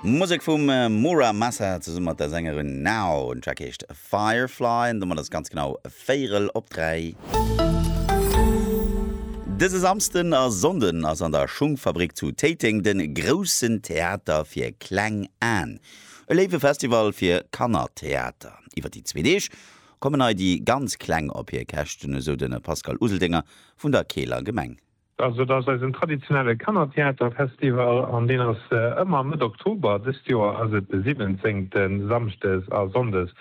Musek vum Mura Masa zesumme mat der Sängerin Nao. Den Track heescht Firefly an domat ass et ganz genau véierel op dräi. Dëse Samsden a Sonnden ass an der Schungfabrik zu Téiteng de groussen Theater fir kleng Aen, e léiwe Festival fir Kannertheater. Iwwer déi zwee Deeg kommen hei déi ganz Kleng op hir Käschten, esou de Pascal Useldinger vun der Keeler Gemeng. Also et ass eisen traditionelle Kannertheaterfestival an deen ass ëmmer Mëtt Oktober. Dëst Joer ass et de siwwenzéngten, Samschdes a Sonndes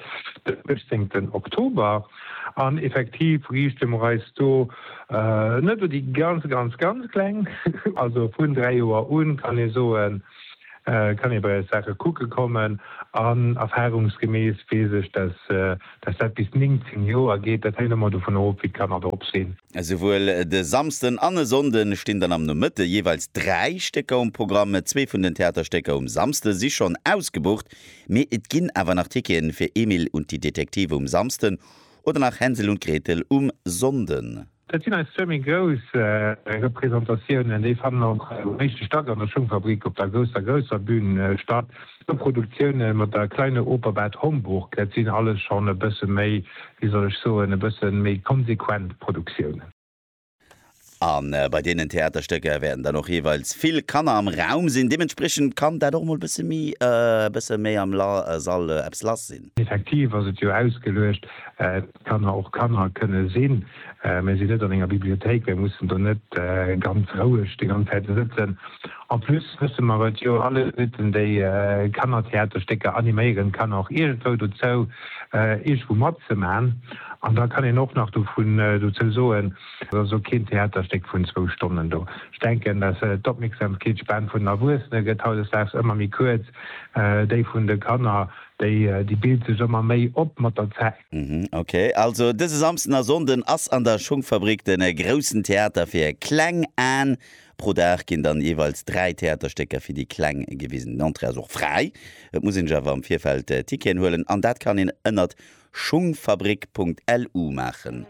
den uechtzéngten Oktober. An effektiv riichte mer eis do net u déi ganz, ganz, ganz Kleng. Also vun dräi Joer u kann ee soen, kann ee bei eis Saache kucke kommen. An erfarungsgemäss weess ech, dass dat bis 19 Joer geet. Dat hänkt ëmmer dovunner of, wéi d'Kanner drop sinn. Esouwuel de Samsden an e Sonnde stinn dann am Nomëtte jeeweils dräi Stécker um Programm. Zwee vun den Theaterstécker um Samsde si schonn ausgebucht, mee et ginn awer nach Ticketen fir Emil und die Detektive um Samsden oder nach Hänsel und Gretel um Sonnden. Dat sinn eis zwee méi grouss Representatiounen. Déi fannen och um éischte Stack an der Schungfabrik op der grousser, grousser Bün statt. Zwou Produktioune mat der Kleine Oper Bad Homburg, dat sinn alles schonn e bësse méi, wéi soll ech soen, e bësse méi konsequent Produktiounen. A bei deenen Theaterstécker wäerten dann och jeeweils vill Kanner am Raum sinn. Deementspriechend kann dat och mol e bësse méi am Sall eppes lass sinn. Effektiv ass et jo ausgeluecht. Kanner och Kanner kënne sinn, mä si net an enger Bibliothéik, mä mussen do net ganz roueg déi ganz Zäit sëtzen. En plus wësse mer et jo alleguerten, déi Kannertheaterstécker animéieren d'Kanner och iergendwou dozou, iergendwou matzemaachen. An da kann een och nach dovun dozou soen, et ass och keen Theaterstéck vun zwou Stonnen do. Ech denken, dass d'Opmierksamkeetsspan vun den Erwuessene gëtt hautdesdaags ëmmer méi kuerz, déi vun de Kanner Déi bilt sech ëmmer méi op mat der Zäit. Mhm ok, also dëse Samsden a Sonnden ass an der Schunckfabrik den groussen Theater fir kleng Aan. Pro Dag ginn dann jeweils 3 Theaterstécker fir déi Kleng gewisen. Den Entrée ass och fräi, et muss een sech awer am Virfeld Ticketen huelen an dat kann een ënnert schungfabrik.lu maachen.